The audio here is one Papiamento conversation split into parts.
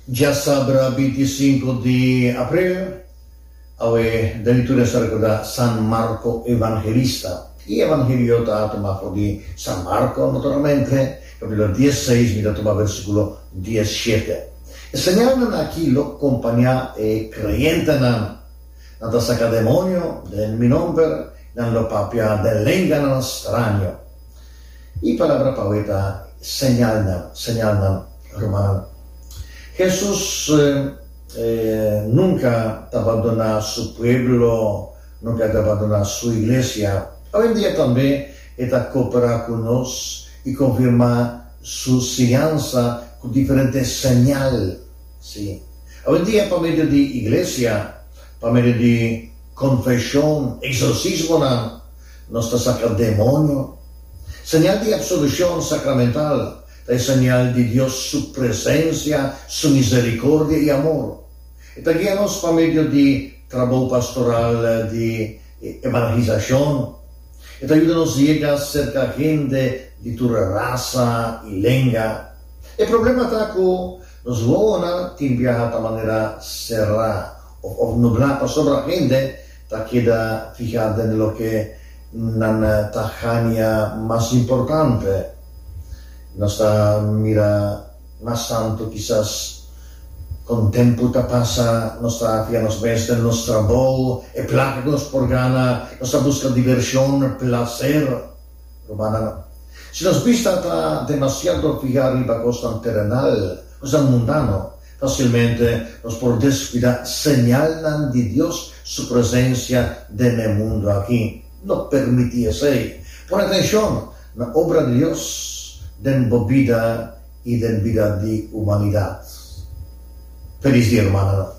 Dja sabra binti i sinku di april, awe David tur esta rekorda San Marko Evangelista. E Evangelio ta tuma for di San Marko, naturalmente, kapitulo dies seis mi ta tuma versikulo dies shete. E señalnan aki lo kompañá e kreyentenan, Nan ta saka demonio den mi nomber, nan lo papia den lenganan straño. E palabra p'awe ta señalnan, señalnan, rumannan. Hesus nunka ta bandoná su pueblo, nunka ta bandoná su iglesia. Awendia tambe e ta koperá ku nos i konfirmá su siñansa ku diferente señal. Sí, awendia pa medio di iglesia, pa medio di konfeshon, eksorsismonan. Nos ta saka demonio. Señal di absolucion sacramental ta e señal di Dios su presencia, su misericordia y amor. E ta guia nos pa medio di trabou pastoral di evangelisacion. E ta yuda nos yega cerca hende di tur rasa y lenga. E problema ta cu nos wowonan tin biaha ta manera cerra of nubla pasobra hende ta keda fihá den loke nan ta hania mas importante. Nos ta mira mas santu kisas kon tempu ta pasa. Nos ta fihá nos mes den nos trabou, e plaka ku nos por gana. Nos ta buska divershon, plaser. Rumannan, si nos bista ta demasiado fihá riba kosnan terenal, kosnan mundano, Facilmente nos por descuida señalnan di Dios su presencia den e mundo aki. No permiti esey! Pone atencion na obra di Dios den bo bida y den bida di humanidad. Feliz Dia Humano!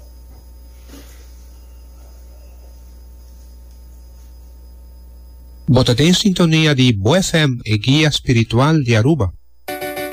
Bo ta den sintonia di BoeFm, e guia spiritual di Aruba.